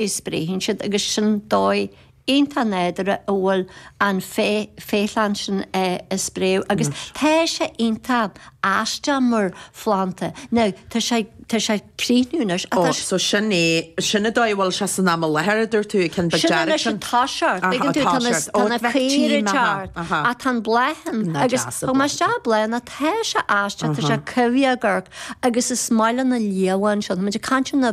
is braitheann siad, agus sin dóigh iontach nádúrtha a bhfuil an féithleann sin ag spréadh, agus tá sé iontach aisteach mar phlanda. Now, tá sé, tá sé ag críochnú anois, ach tá sé. So sin é, sin an dóigh a bhfuil sé san am i láthair, mar a dúirt tú, ag an bit dearg sin? Sin anois atá sé ort, mar a dúirt, tá na caora ag teacht, ach tá na bláthanna, agus is maith leat na bláthanna, ach tá sé aisteach, tá sé cumhra, go hálainn, agus is maith le na leamhain sin, muid ag caint ar na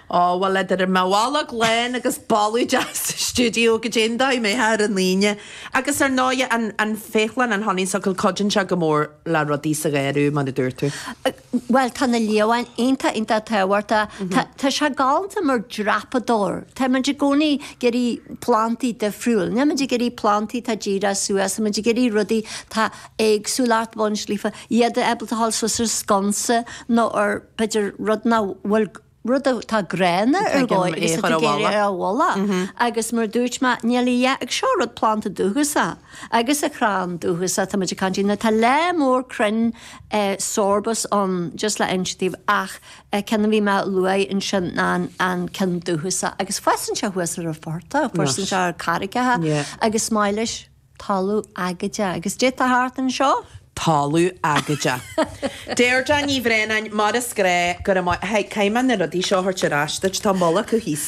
Ó, bhuel, tá an boladh galánta agus boladh sa stiúideo, go dtógfadh sé mo chroí ar an Aoine. Agus ar ndóigh, an, an féithleann, an honeysuckle, cuidíonn sé go mór le rudaí sa gharradh, mar a dúirt tú. Bhuel, tá na leamhain iontach, iontach tábhachtach. Tá, tá sé galánta mar dhreapadóir. Táimid i gcónaí ag iarraidh plandaí difriúil. Nílimid ag iarraidh plandaí atá díreach suas, táimid ag iarraidh rudaí atá éagsúil, ach bun sléibhe, iad ábalta dhul suas ar sconsa nó ar, b'fhéidir, rud nach bhfuil, rud atá gránna ar dhóigh agus tá tú ag iarraidh é a chlúdach. Agus mar a dúirt mé, níl a dhath ag seo rud, planda dúchasach agus crann dúchasach atá muid ag caint air, tá lear mór crainn sorbus ann, just le hinse daoibh ach an ceann a bhí mé a luaigh ansin ná an ceann dúchasach. Agus fásann sé thuas ar an phortach, fásann sé ar charraigeacha agus is maith leis. talamh aigéadach agus sin atá thart anseo, talamh aigéadach. Deirdre Ní Bhraonáin, mar is gnách, go raibh míle. Haigh, caithfidh mé na rudaí seo a thabhairt ar ais duit, tá moll acu thíos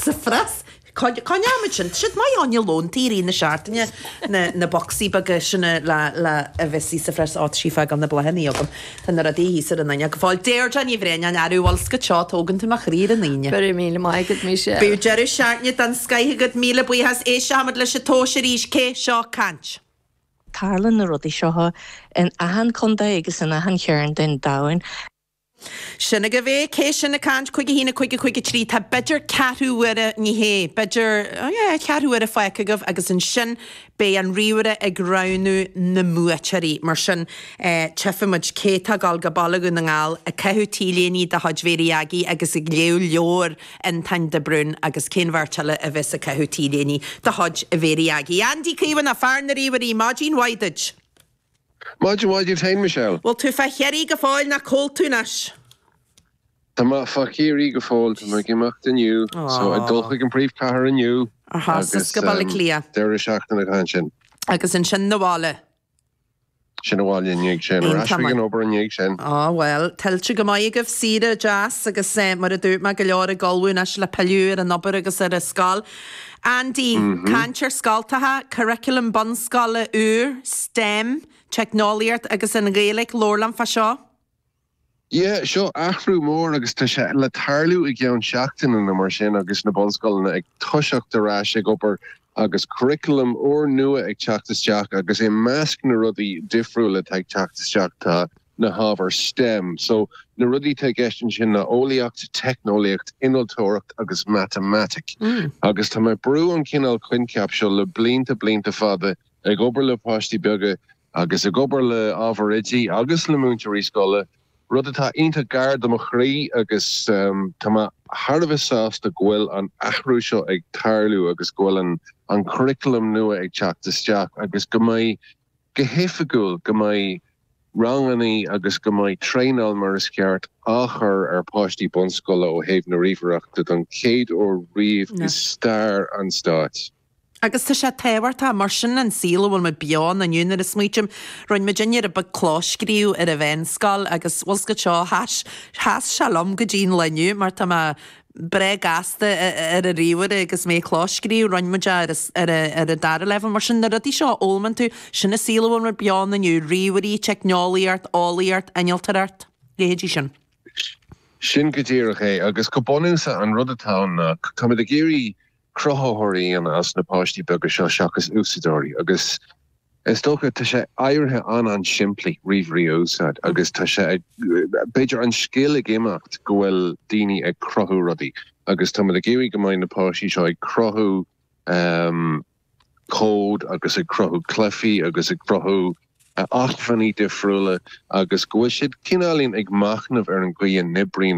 sa phreas. Coinneoimid sin. Tá siad maith ann, don lón i rith na seachtaine, na bocsaí beaga sin uilig a bhíos sa phreas, á, tá sí ag fágáil na bláthanna agam. Tá na rudaí deasa i gcónaí ag fáil, Deirdre Ní Bhraonáin, anró orm scaradh leo, Tógann tú mo chroí ar an Aoine. Go raibh míle maith agat Michelle. Bíodh deireadh seachtaine den scoith agat Míle buíochas Éisteoimid leis an tomhas arís Cé seo ag caint? Tarlaíonn na rudaí seo in achan chontae agus in achan chearn den domhan. Sin agaibh é, Cé sin ag caint? Cúig a haon a naoi cúig cúig trí Tá b'fhéidir ceathrú uaire, ní hea, b'fhéidir, oh yeah, ceathrú uaire fágtha agaibh agus ansin Beidh an ríomhaire ag roghnú na mbuaiteoirí, mar sin tchífimid cé atá ag dul go Baile Dhún na nGall ag caitheamh t-léiní de chuid Mhéirí Agaí agus ag léamh leabhair Fhionntáin de Brún agus cén bheirt eile a bheas ag caitheamh t-léiní de chuid Mhéirí Agaí. Andy Caomhánach, fear na ríomhairí, maidin mhaith duit! Maidin mhaith duit féin, Michelle. Bhfuil tú fá Chiarraí go fóill nó cá bhfuil tú anois? Tá mé fá Chiarraí go fóill, tá mé ag imeacht inniu, so ag dul chuig an bpríomhchathair inniu, ar ais suas go Baile Átha Cliath, deireadh seachtaine acu ansin. Agus ansin chun an bhaile? Chun an bhaile i ndiaidh sin, ar ais chuig an obair i ndiaidh sin. Á bhuel, tuillte go maith agaibh, saoire deas agus mar a dúirt mé, go leor ag ullmhú anois le pilleadh ar an obair agus ar an scoil. Andy, Caint ar scoltacha, curriculum bunscoile úr, stem, teicneolaíocht agus an Ghaeilge, labhair linn fá seo. Yeah, seo athrú mór agus tá sé le tarlú i gceann seachtaine nó mar sin agus na bunscoileanna ag toiseacht ar ais ag obair agus curriculum úr nua ag teacht isteach agus i measc na rudaí difriúla atá ag teacht isteach tá na hábhair stem, so na rudaí atá i gceist ansin ná eolaíocht, teicneolaíocht, innealtóireacht agus matamaitic. Agus tá mé ag brú an cineál coincheap seo le blianta, blianta fada, ag obair le páistí beaga agus ag obair le ábhair oidí agus le múinteoirí scoile, rud atá iontach gar do mo chroí agus tá mé thar a bheith sásta go bhfuil an athrú seo ag tarlú agus go bhfuil an curriculum nua ag teacht isteach agus go mbeidh go hoifigiúil, go mbeidh ranganna agus go mbeidh traenáil mar is ceart á chur ar pháistí bunscoile ó thaobh na ríomhaireachta don chéad uair riamh i stair an stáit. Agus tá sé tábhachtach, mar sin an saol a bhfuil muid beo ann inniu. Nuair a smaoitim, rinne muid aniar ab ea clóscríobh ar an mheánscoil agus, bhuel, an scil seo, sheas sé liom go dtí an lá inniu mar tá mé, breá gasta ar an ríomhaire agus mé ag clóscríobh, rinne muid é ar an dara leibhéal. Mar sin, na rudaí seo a fhoghlaimíonn tú, sin an saol a bhfuil muid beo ann inniu, ríomhairí, teicneolaíocht, eolaíocht, innealtóireacht, leithéidí sin. Sin go díreach é, agus go bunúsach an rud atá ann ná táimid ag iarraidh cruthaitheoirí a dhéanamh as na páistí beaga seo seachas úsáideoirí agus is dócha tá sé éirithe an-simplí, ríomhairí a úsáid agus tá sé ag, b'fhéidir, an scil ag imeacht go bhfuil daoine ag cruthú rudaí agus táimid ag iarraidh go mbeidh na páistí seo ag cruthú cód agus ag cruthú cluichí agus ag cruthú acmhainní difriúla agus go bhfuil siad cineálaín ag machnamh ar an gcaoi a n-oibríonn an